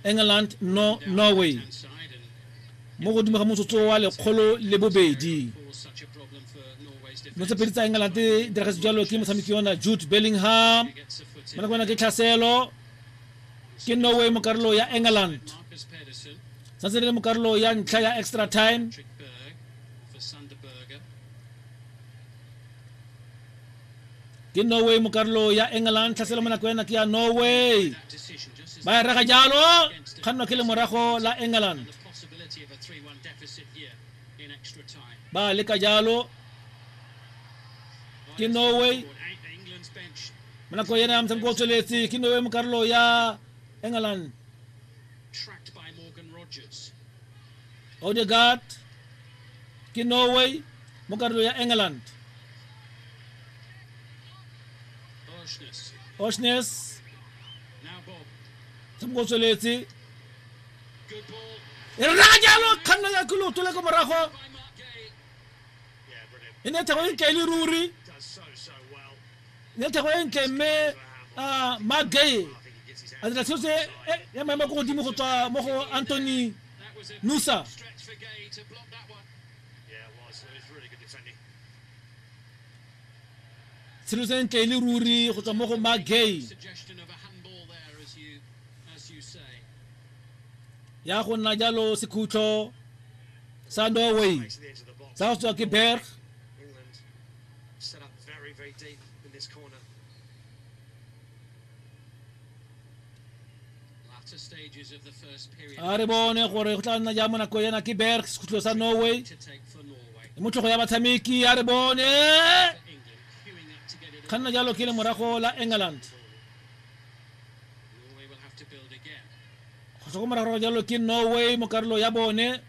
England no Norway mo godimo ga motsotso wa lekgolo le bobedi no tse pedi tsa England di diragetse jalo ke motshameki yona Jude Bellingham mo nako yona ke tlhaselo ke Norway mo karolo ya England santse le mo karolo ya ntlha ya extra time ke norway mo karolo ya england tlhaselo mo nako ya nake ya norway ba e rega jalo kgannwa ke le morago la england ba leka jalo ke norway mo nako ena ya motshameko o tsweletse ke norway mo karolo ya england odegaard ke norway mo karolo ya england oshnes tshamoko o tsweletse e re raya jalo kganna ya ke loto le ko morago e ne thabo e kaele ruri ya thego e ntle mme uh, mark gay a dira tshwetso ya maemo ko godimo go tswa mo go anthony nusa tshelo se ntle e le ruri go tswa mo go mark gay ya go nna jalo sekhutlho sa norway sa go tswa ke berg Set up very, very deep in this corner. a re bone gore go tla nna jang mo nako ena ke berg sekhutlo sa norway le motlhogo ya batshameki a re bone kganna jalo ke le morago la england go tlhokomora gore jalo ke norway mo karolo ya bone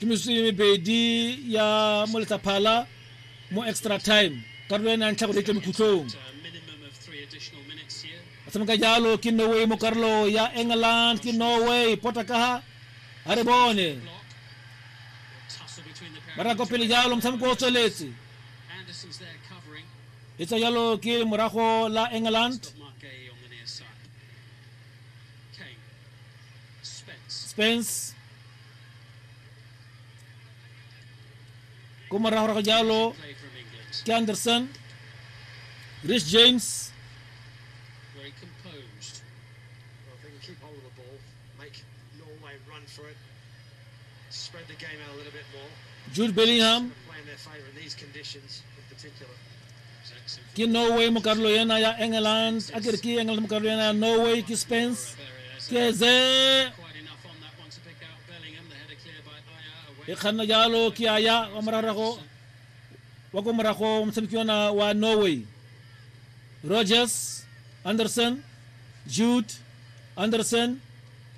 ke mesomepedi ya mo letlaphala mo extra time karolo e nang tlha gore e tle mokhutlong ba tshameka jalo ke norway mo karolo ya england ke norway pota ka ha a re bone ba raya ko pele jalo motshameko o tsweletse e tswa jalo ke morago la england spence ko moragorago jalo ke anderson rich james jude bellingham ke norway mo karolo ena ya england a kere ke england mo karolo ena ya norway ke spence ke ze e kganna jalo ke aya wa morarago wa ko morago motshameki ona wa norway rogers anderson jude anderson